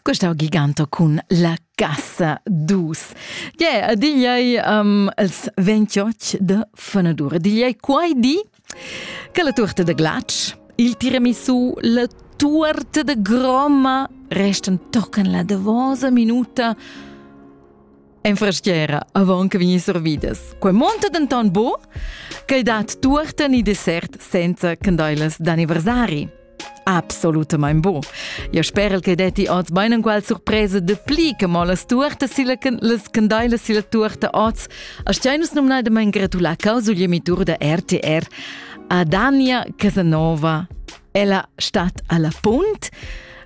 Questa è giganta cun la casa dus. Yeah, digliei um, els 28 de fenadur. Digliei quai di che la torta de glac, il tiramisu, la torta de groma restan tocan la davosa minuta En freschiera avon che vegnir servidas. Quei monta denton bu che dat tuorta ni dessert senza candeilas d'anniversari. Absolutamente bu. Io spero che detti oz bein enqual surpresa de pli che mo las tuorta silla las candeilas silla tuorta oz. A steinus nomnai de mein gratular causugliemitur da RTR a Dania Casanova. Ella stat alla punt.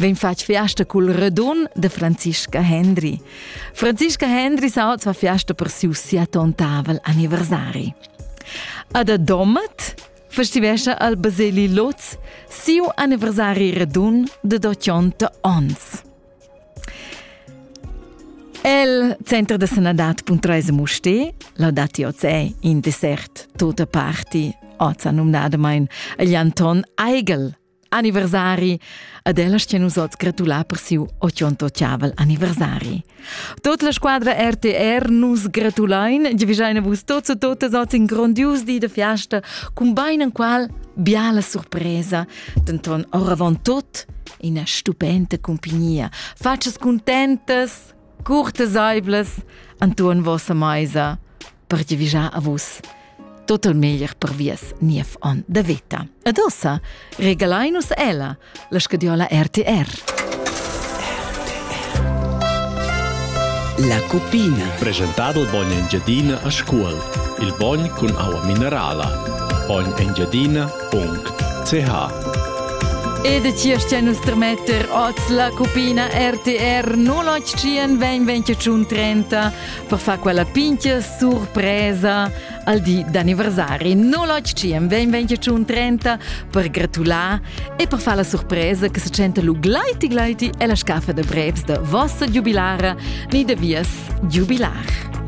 Vegn fatg fiasta cul radun de Franziska Hendry. Franziska Hendry sa oz fa fiasta per siu siatontavel anniversari. A da Domat festivescha al Baseli Lotz siu anniversari radun de 80 ons. El center de sanadad.res Muste, laudati oz è in dessert tota parti, oz numnadamein agl Anton Eigel, anniversari ed ella stia nus oz gratular per siu 88 anniversari. Tot la squadra RTR nus gratulain, giavischein vus tots e totas oz in grondius di de fiasta, cun bein en qual biala surpresa, denton oravon tot ina stupenda compagnia. Facas contentas, curteseivlas, Anton vossa meisa. per ti vigiar a vus tot il meglier per vies niev on da veta. Ed ossa, regalain nus ella, la scadiola RTR. La cupina. Presentado il bogn Engiadina a Scuol. Il bogn cun aua minerala. bognengiadina.ch Ed ci stia nus tremetter oz la cupina RTR 081 20 30 per far quella pincha surpresa al di d'anniversari. No lotg ci am vegn 2030 per gratular e per far la surpresa che se senta lu glaiti glaiti e la scaffa de brevs de vossa giubilara ni de vias giubilar.